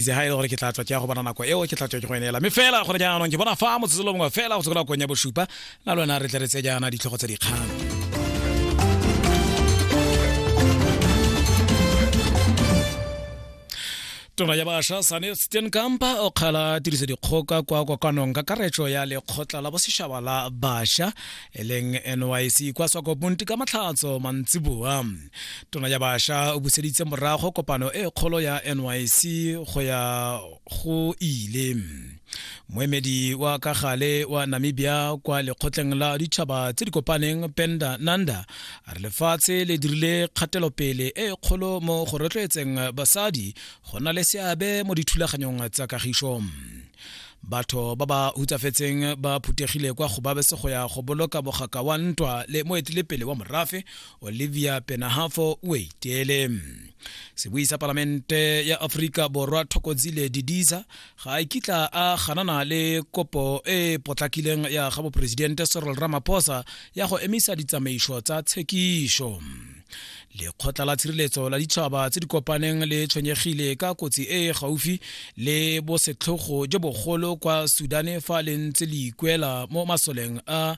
itse ga e le gore ke tla tswa ke ya go bona nako eo ke tla tswa ke go eneela mme fela gone jaanong ke bona fa motsetsolo mongwe fela go tsekola kong ya bosupa na lona re tle re tse jaana ditlhogo tsa dikgang tona ya basha sane stenkampa o kgala tiriso dikgoka kwa kokanong ka karetso ya lekgotla la bosešaba la basha e leng nyc kwa swakoponti ka matlhatso mantsiboa tona ya basha o buseditse morago kopano e kgolo ya nyc go ya go ile moemedi wa ka gale wa namibia kwa lekgotleng la ditšhaba tse di kopaneng penda nanda a re lefatshe le dirile kgatelopele e kgolo mo go rotloetseng basadi go na le seabe mo dithulaganyong tsa kagišo batho ba ba hutsafetseng ba phuthegile kwa go babese go ya go boloka mogaka wa ntwa le moetelepele wa morafe olivia penahafo o iteele sebui sa palamente ya aforika borwa thokozile didiza ga a kitla a ganana le kopo e potlakileng ya ga boporesidente sorol ramaphosa ya go emisa ditsamaiso tsa tshekišo lekgotla la tshireletso la ditšhaba tse di kopaneng le tshwenyegile ka kotsi e e gaufi le bosetlhogo jo bogolo kwa sudane fa le ntse le ikwela mo masoleng a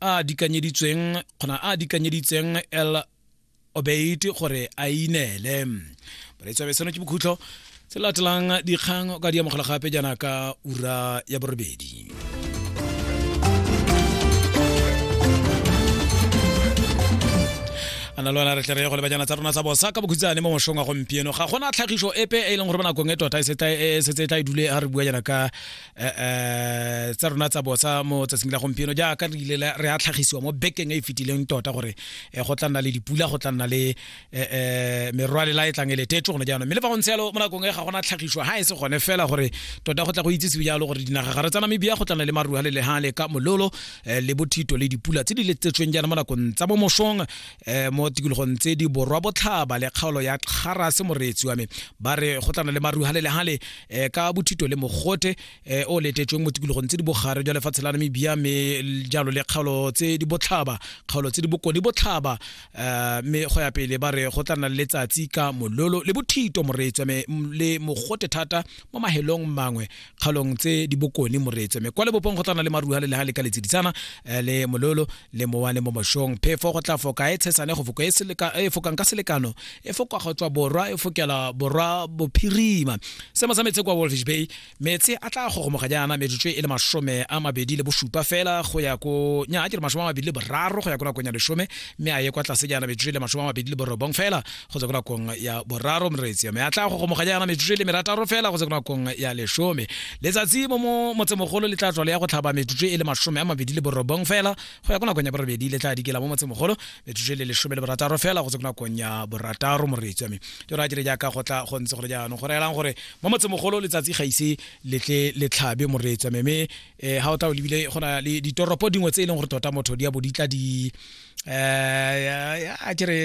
a dikanyeditsweng kgona a dikanyeditseng el obeite gore a ineele bareetsi ba seno ke bokhutlo se latelang dikgang o ka di amogela gape jaana ka ura ya borobedi ana lona re tle re go le bajana tsa rona tsa bosa ka bokhutsane mo moshong wa gompieno ga gona tlhagiso epe e leng gore ba nakong e tota e setse e tla e dule a re bua jana ka eh, eh, tsa rona tsa bosa mo tsatsing la gompieno jaaka re ile re a tlhagisiwa mo bekeng e e fetileng tota gore eh, go tla nna le dipula go tla nna le merwalela e tlang e letetso gone jaanong mme le fa go ntse yalo mo nakong e ga gona tlhagiso ga e se gone fela gore tota go tla go itsisiwe jalo gore dinaga gare tsa namibia go tlana le marua le leha le ka mololo le bothito le dipula tse di letsetsweng jaana mo nakong tsa bomosong mo tikologong tse di borwa botlhaba le kgaolo ya kgarase moreetsi wa me ba re go tlana le marua le leha le eh, ka bothito le mogote eh, o letetsweng mo tikologong tse di bogare jwa lefatshe la namibia mme jalo le kgaolo tse di botlhaba kgaolo tse di bokone botlhaba eh, mme go ya pele ba re go tla nna le letsatsi ka mololo le bothito moreetswa mme m- le mogote thata mo mahelong mangwe kgaolong tse di bokone moreetswa mme kwa lebopong go tla nna le maruha le leha le ka letseditsana eh, le mololo le mowa le mo mošong phefo go tla foka e tshesane go foko e, e fokang ka selekano e foka go tswa borwa e fokela borwa bophirima semo sa metsi kwa wolfish bay metsi a tla gogomoga jaana metsotso e le masome a mabedi le bosupa fela go ya ko nya a ke re masome a mabedi le boraro go ya ko nakong ya lesome mme a ye kwa tlase jaana metsotso e le masome a mabedi le borobong fela go tswa ko nakong ya boraro moreetsi mme a tla go gomoganya yana metsotso e le merataro fela go tswa ko nakong ya lesome letsatsi mo motsemogolo le tla tswa le ya go tlhaba metsotso e le masome a mabedi le borobong fela go ya ko nakong ya borobedi le tla dikela mo motsemogolo metsotso e le lesome le borataro fela go tswa ko nakong ya borataro moreetsi mme ke ra dire jaaka go tla go ntse gore jaanong go reelang gore mo motsemogolo letsatsi ga ise le tle le tlhabe moreetsi mme um eh, ga o tla o lebile go na le ditoropo dingwe tse e leng gore tota motho di ya bo di tla di eh a ke re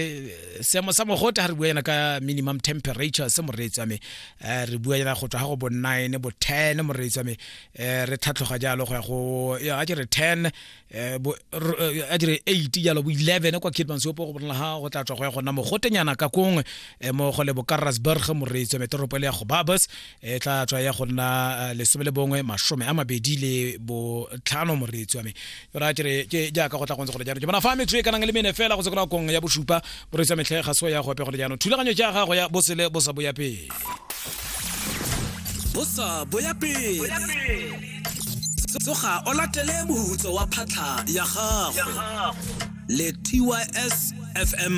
seemo sa mogote ha re bua yana ka minimum temperature se moreetsi wa me eh, re bua yana go tswa ga go bo 9 bo 10 moreetsi wa me eh, re tlhatlhoga jalo go ya go ya a ke re 10 eh, bo a ke re 8 jalo bo 11 kwa Kidman Sopo go bona ha go tla tswa go ya gona mogotenyana ka kongwe mo go le bo Karasburg moreetsi wa me toropo le ya go Babas e tla tswa ya go nna eh, lesome le bongwe masome a mabedi le botlhano moreetsi wa me yona kere ke jaaka go tla gontse gore jaanong ke bona fa metso e kanang le mene fela go se kona kong ya bosupa moreetsi wa metlhe ga se wa ya gope gore jaanong thulaganyo ja gago ya bosele bo sa boya pele bosa boya pele tsoga o latele mohutso wa phatlha ya gago le tys fm